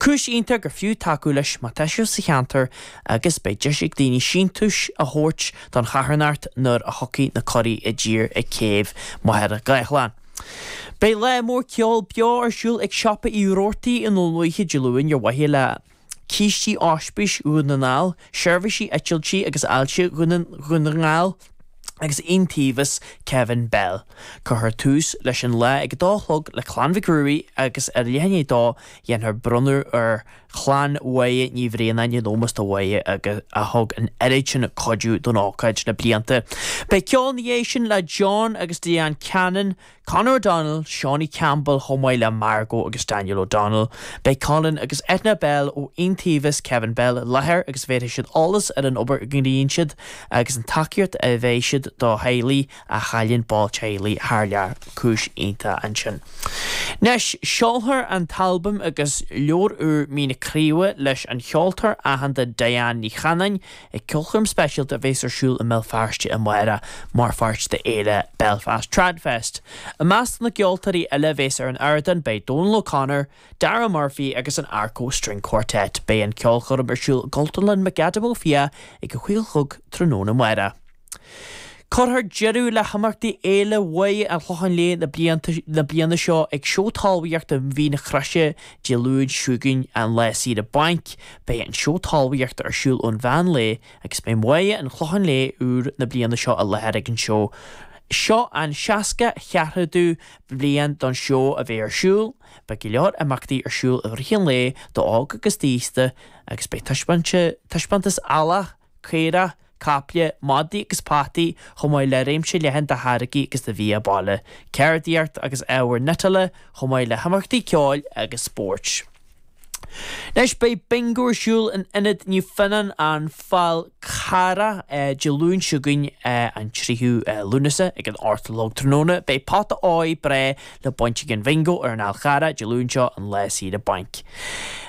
Cúis iontach gur fiú tacú leis má tá sibh sa cheantar agus beidh deis ag daoine síntiúis a thabhairt don charthanacht nuair a thiocfaidh na curaigh i dtír ag céibh Mhachaire Gathlán. Beidh lá mór ceoil beo ar siúl ag Siopa Uí Roarty i nDún Lúiche Dé Luain ar mhaithe le cistí Ospís Dhún na nGall. Seirbhísí Eitiltí agus Ailse Dhún na nGall agus Iontaobhas Kevin Bell. Cuirfear tús leis an lá ag a dó a chlog le Clann Mhic Ruairí agus ag leath i ndiaidh a dó dhéanfar bronnadh ar chlann Mháire Ní Bhraonáin in ómós do Mháire a thug an oiread sin cuidiú don ócáid le blianta. Beidh ceol ina dhiaidh sin le John agus Diane Cannon, Conor O'Donnell, Seanie Campbell chomh maith le Margo agus Daniel O'Donnell. Beidh Colin agus Eithne Bell ó Iontaobhas Kevin Bell i láthair agus bhéarfaidh siad eolas ar an obair a ghníonn siad agus an tacaíocht a bheir siad do theaghlaigh a chailleann ball teaghlaigh thar lear. Cúis iontach ansin. Anois seolfar an t-albam agus leabhar úr Mín na Craoibhe leis an cheoltóir aitheanta Diane Ní Chanainn Ag ceolchoirm speisialta a bhéas ar siúl i mBéal Feirste amárach mar pháirt de fhéile Belfast Tradfest. I measc na gceoltóirí eile a bhéas ar an ardán beidh Dónal O'Connor, Darragh Murphy agus an Arco String Quartet. Beidh an ceolchoirm ar siúl i gCultúrlann McAdam Ó Fiaich ag a 5 a chlog tráthnóna amárach. Cuirfear deireadh le himeachtaí Fhéile Mháire an Chlocháin Léith na bliana seo ag Seó Talmhaíochta Mhín na Croise Dé Luain seo chugainn, an Lá Saoire Bainc. Beidh an Seó Talmhaíochta ar siúl ón mheán lae agus beidh Máire an Chlocháin Léith úr na bliana seo i láthair ag an seó. Seo an seasca cheathrádú bliain don seó a bheith ar siúl. Beidh go leor imeachtaí ar siúl i rith an lae d'óg agus d'aosta agus beidh taispeántas eallach, caora, caiple, madaí agus peataí chomh maith le réimse leathan de tháirgí agus de bhia baile, ceardaíocht agus ábhar cniotála chomh maith le himeachtaí ceoil agus spóirt. Anois beidh Bingo ar siúl in Ionad Naomh Fionnán, An Fál Carrach, Dé Luain seo chugainn, an 3ú Lúnasa, ag an ocht a chlog tráthnóna. Beidh pota óir breá, le baint ag an Bhingo ar an Fhál Charrach Dé Luain seo an lá saoire bainc.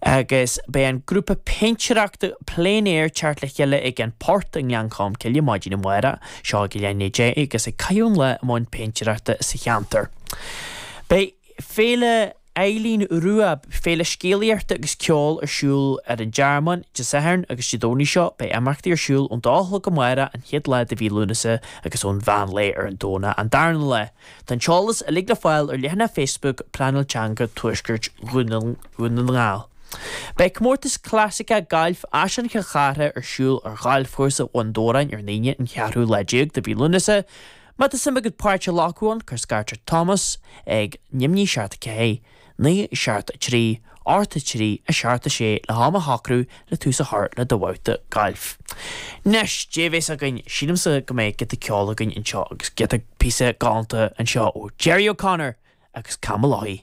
Agus beidh an grúpa péintéireachta plein air ag teacht le chéile ag An Port i nGleann Cholm Cille maidin amárach seo ag a leath i ndiaidh deich agus ag caitheamh an lá i mbun péintéireachta sa cheantar. Beidh Féile Eileen Rua, féile scéalaíochta agus ceoil ar siúl ar an dTearmann Dé Sathairn agus Dé Domhnaigh seo. Beidh imeachtaí ar siúl ón dá a chlog amárach, an chéad lá de mhí Lúnasa, agus ón mheán lae ar an Domhnach, an darna lá. Tá an t-eolas uilig le fáil ar leathanach Facebook Pleanáil Teanga Tuaisceart Dhún na nGall. Beidh Comórtas Clasaiceach Gailf Áislann Chill Chartha ar siúl ar Ghalfchúrsa Bhun Dobhráin ar an Aoine an cheathrú lá déag de mhí Lúnasa. Má tá suim agat páirt a ghlacadh ann, cuir scairt ar Thomas ag, Neamhní seacht a ceathair. 9 7 3, 8 3, 6 7 6 le ham a shocrú le tús a chur le do bhabhta gailf. Anois, cad é a bheas againn, sílimse go mbeidh giota ceoil againn anseo agus giota, píosa, galánta anseo ó Gerry O'Connor agus Tam O'Loughlin.